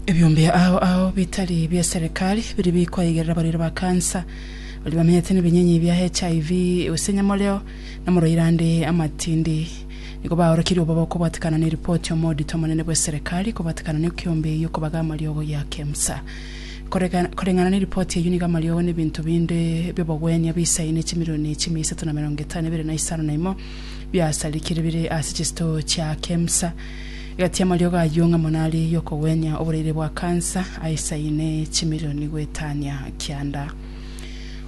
Ebiombe ao ao bitari bia serikali biri bikwaigerera abarwaire ba kansa baria bamenyete nebinyinyi bia HIV, gose nyamoreo, namorwaire ande amatindi. Nigo baorokirie oboboko bwatikana ne ripoti omodito omonene bw'eserekari kobatikana nekiombe eyio kobaga amariogo ya Kemsa. Koreng'ana ne ripoti eyio nigo amariogo nebinto binde bi'obogwenia bisaine echimironi chimia isato na merongo etano nebere na isano na imo biasarikire bire ase chisitoo chia Kemsa. Egati y'amariogo ayio ng'a mono aria ey'okogwenia oboraire bwa kansa aisaine chimironi goetania kianda.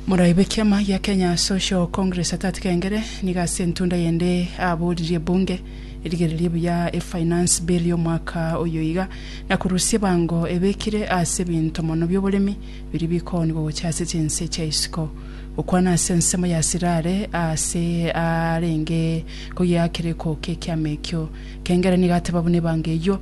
Morai bw'ekiama gia Kenya Social Congress Atati Kengere nigo ase entunda yende aboririe ebunge erigererie buya e Finance Bill y'omwaka oyo iga na korusia ebango ebekire ase ebinto mono bi'oboremi biria bikoonigwa gocha ase chinse chia isiko gokwana ase ensemo ya Sirare ase arenge kogiakereko k'ekiama ekio. Kengere nigo ateba buna ebango eyio